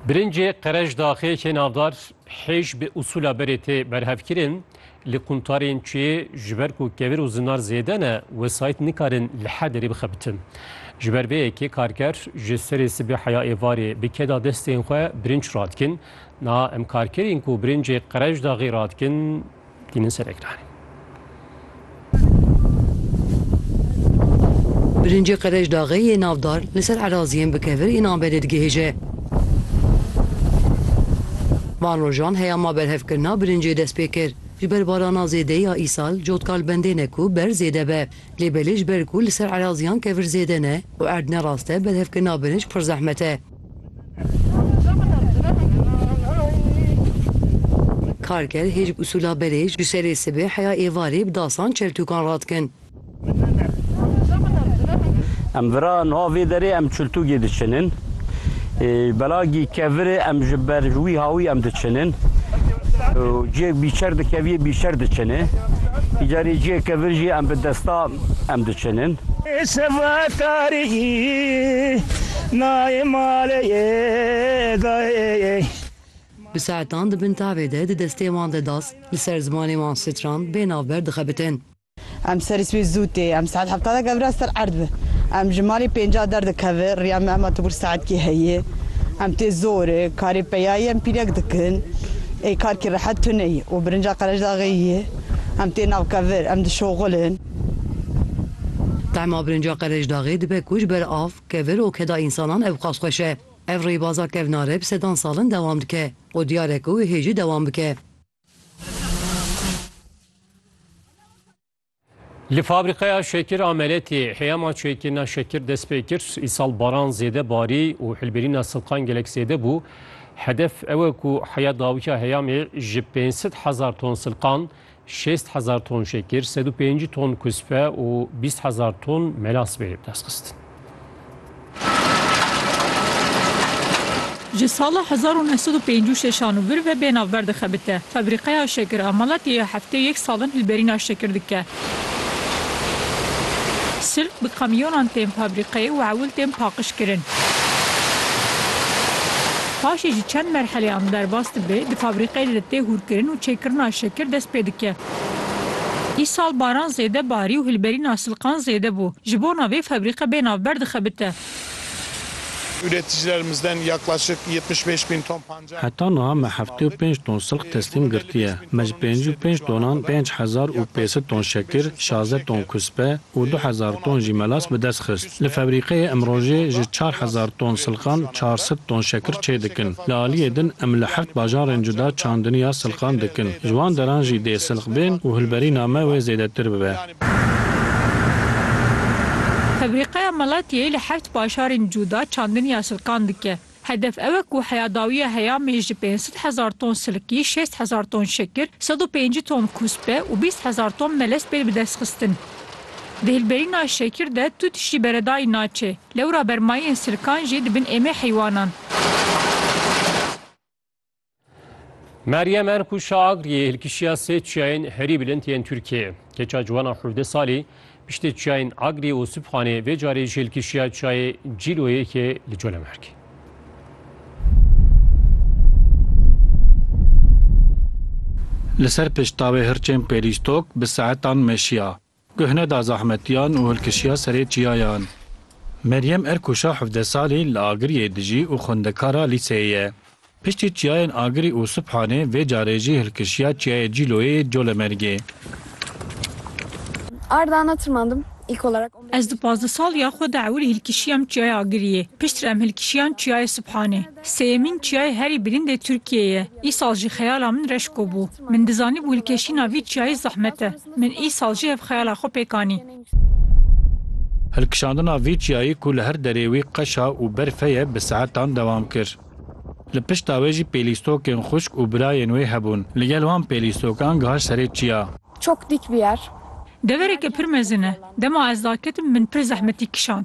Birincê qerejdaxê yê navdar hêj bi usûla berê tê berhevkirin. Li quntarên çiyê ji ber ku kevir û zinar zêde ne, wesayît nikarin li her derê bixebitin. Ji ber vê yekê karker ji serê sibê heya êvarê bi keda destên xwe birinc radikin. Niha em karkerên ku birincê qerejdaxê radikin, Tînin ser ekranê. Birincê qerejdaxê yê navdar li ser eraziyên bi kevir ên Anberê digihêje. Van rojan heyama berhevkirina birincê dest pê kir. Ji ber barana zêde ya îsal cotka li bendê ne ku berz zêde be. Lê belê ji ber ku li ser eraziyan kevir zêde ne û erd ne rast e berhevkirina birinc pir zehmet e. Karger hêj bi usûla berê ji şerê sibê heya êvarê bi dasan çeltûkan radikin. Em vira niha vê derê em çiltûgê diçinin. Belagî kevirê em ji ber wî hawî em diçinin. Ciyek bîçer dikeviyê bîçer diçinê. Îcarê ciyek kevir jî em bi desta em diçinin. Nayê malê yê dayê. Bi saetan di bin tavê de di destê wan de das li ser zimanê wan strand bê navber dixebitin. Em serî sibê zû tê. Em saet hevta de gevra ser erd bi. Em ji malê pênca derdikevin. Riya me hema tibûr saetkî heye. Em tê zorê. Karê peyayê em pîrek dikin. Ê kar kî rehet tune ye û birinca Qerejdaxê ye. Em tê navkevir. Em dişoxilin. Tahma birinca Qerejdaxê dibe ku ji ber av Kevir û keda însanan ewqas xweş e. Ev rêbaza kevnare bi sedan salin dewam dike û diyar e ku wê hê jî dewam bike. Li fabrîqeya şekir a Meletê heyama çêkirina şekir dest pê kir. Îsal baran zêde barî û hilbirîna silkan gelek zêde bû. Hedef ew e ku heya dawiya heyamê ji pênc sed hezar ton silkan Şêst hezar ton şekir, sed û pêncî ton kuspe û bîst hezar ton melas bê destxistin. Ji sala hezar û neh sed û pêncî û şeş an vir ve bê navber dixebite. Febrîqeya şekir a Malatiyê heftê yek salin hilberîna şekir dike. Sirk bi kamyonan tên febrîqeyê û ewil tên paqijkirin. Paşê ji çend merheleyan derbas dibe, di fabrîkeyê de tê hûrkirin û çêkirina şekir dest pê dike. Îsal baran zêde barî û hilberîna silqan zêde bû. Ji bona vê febrîke bê navber dixebite. Üreticilerimizden yaklaşık yetmiş beş bin ton pancar Heta niha me heftê û pênc ton silq teslîm girtiye. Me ji pêncî û pênc tonan pênc hezar û pêsed ton şekir, şazdeh ton kuspe û du hezar ton jî melas bi dest xist. Li febrîqeyê em rojê ji çar hezar ton silqan çar sed ton şekir çê dikin. Li aliyê din em li heft bajarên cuda çandiniya silqan dikin. Ji wan deran jî dê silq bên û hilberîna me wê zêdetir bibe. Febrîqeya Malatiyê li heft bajarên cuda çandiniya silqan dike. Hedef ew e ku heyadawiya heyamê ji pênc sed hezar ton silkî, şêst hezar ton şekir, sed û pêncî ton kûspe û bîst hezar ton melez bên bidestxistin. Di hilberîna şekir de tu tiştî beredayî naçê. Lewra bermayiyên silkan jî dibin êmê heywanan. Meryem Erku Şaagriyê hilkişiya sê çiyayên herî bilind yên Tirkiyeyê. Keça ciwana hevdeh salî piştê çiyayên Agriyê û Sibxanê vê carê jî hilkişiya çiyayê Cîloyêkê li Colemêrgê. Li ser piştavê hirçên pêlîstok bi saetan meşiya. Guh neda zahmetiyan û hilkişiya serê çiyayan. Meryem Erkûşa hevdeh salî li Agiriyê dijî û xwendekara lîseyê ye. Piştî çiyayên Agirî û Subhanê vê carê jî hilkişiya çiyayê Cîloyê yê Colemêrgê. Ez di pazdeh saliya xwe de ewil hilkişiyam çiyayê Agiriyê. Piştre em hilkişiyan çiyayê Subhanê. Sêyemîn çiyayê herî bilînd ê Tirkiyeyê ye. Îsal jî xeyala min Reşko bû. Min dizanîbû hilkeşîna vî çiyayê zehmet e. Min îsal jî ev xeyala xwe pêk anî. Hilkişandina vî çiyayê ku li her derê wî qeşa û berfe ye bi saetan dewam kir. Li pişta wê jî pêlîstokên xwişk û birayên wê hebûn. Li gel wan pêlîstokan gihaj serê çiya. Çok dik bir yer. Devereke pir mezin e. Dema ez daketim min pir zehmetî kişand.